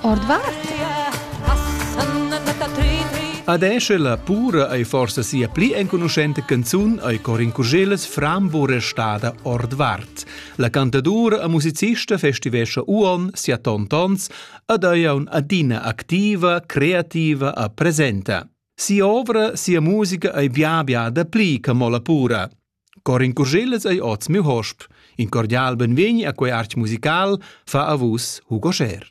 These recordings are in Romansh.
Ordvart? Adesch la pura ei forsa sia pli enconuschenta canzun ei Corin Curgeles Frambo restada ordvart. La cantadura e musicista festivescha uon sia tontons ad ei adina activa, creativa e presenta. Sia ovra, sia musica ei bia bia da pli che mo la pura. Corin Curschellas ei oz miu hosp. In cordial benvegni a quei artg musical, fa a vus Hugo Scher.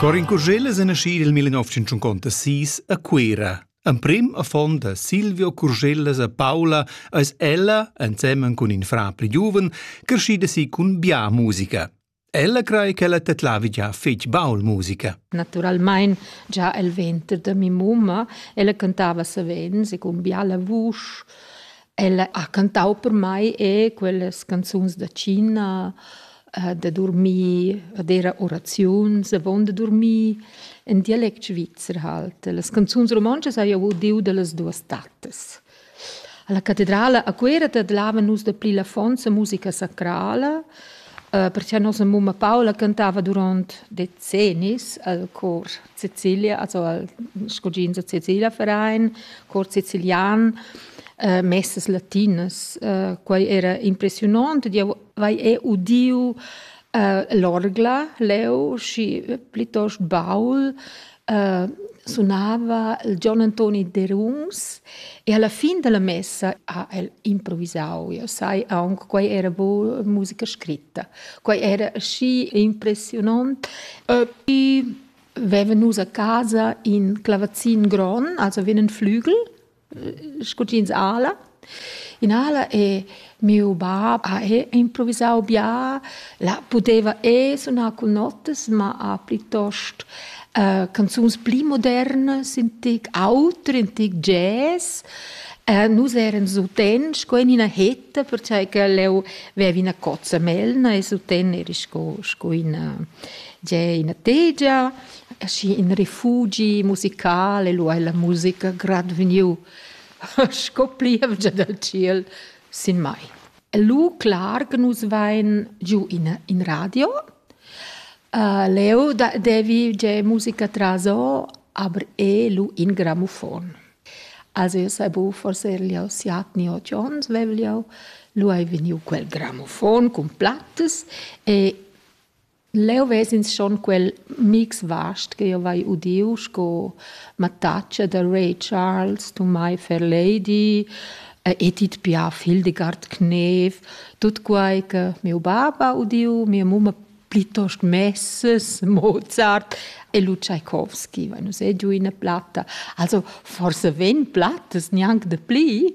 Corin Curschellas è nascì nel 1956 a Cuera. Emprim affon da Silvio Curschellas a Paula eis ella, ensemen cun in frar pli giuven, crescida si cun bia musica. Ella crei ch'ella tedlavi gia fetg baul musica. Naturalmein gia el venter da mi mumma, ella cantava savens e cun biala vusch. Ella ha cantau per mei e quellas canzuns da Cina, eh, da dormir, ad era oraziuns avon da dormir, en dialect svizzer halt. Las canzuns romontschas hai jeu udiu dallas duas tattas. Alla catedrala a Cuera tadlavan nus dapli l'affonza musica sacrala, eh, perche nossa mumma Paula cantava durant decennis al cor Sicilia, also al scugins a Sicilia Verein, cor sicilian, eh, messas latinas. Eh, quai era impressiunant, eu vai e udiu eh, l'orgla leu, schi plitost baul, sunava il Gion Antoni Derungs e alla fin dalla messa ha el improvisau. Eu sai aunc, quei era bu musica scritta. Quei era aschi impressionant. Vevan nus a casa in clavazin gron, also wie einen Flügel scutins ala. In ala e miu bab ha improvisau bia, la pudeva e sunar cun notas, ma ha plitost uh, canzuns pli modernas, in tic auter, in tic jazz. Uh, nus eran suten sco in ina hetta, perciò che leu vevi ina cozza melna e suten eri sco, sco ina, ina tegia. aschi in refugi musical e lu ei la musica grad vegniu sco plievgia dal tschiel sin mai. Lu clar che nus vein giu in, in radio. Uh, leu da, devi ge musica traso, aber e lu in grammofon. Also io sai bu, forse gliau siat ni ot Jones vegliau, lu ei vegniu quel grammofon cun plattas e Leu ves'ins schon quel mix vast ch'jeu vai udiu sco mattatscha da Ray Charles, Tumai Fairlady, Edith Piaf, Hildegard Knev, tut quei che miu bab ha udiu, mia mumma plitost Messes, Mozart e lu Tschaikovski, va nus ei giu ina platta. Also forsa vegn plattas gnanc dapli.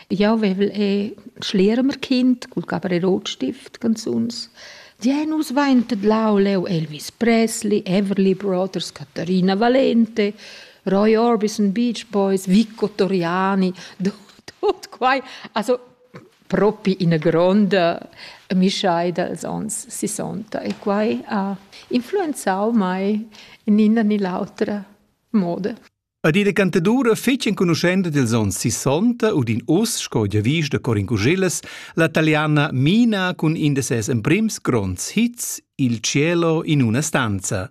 Jau vevel e schliermer kind cul caparerotstift canzuns. Die nus vaintet lauleu Elvis Presley, Everly Brothers, Caterina Valente, Roy Orbison, Beach Boys, Vico Toriani, tut quai. Also propi ina gronda mischaida als ons 60 e quai ha influenzau mai in ina ni l'autra moda. Ad ina cantadura fetg enconuschenta dils onns sissonta u din uss, sco giavisch da Corin Cuschillas, la taliana Mina cun in da ses emprims gronds hits, Il cielo in una stanza.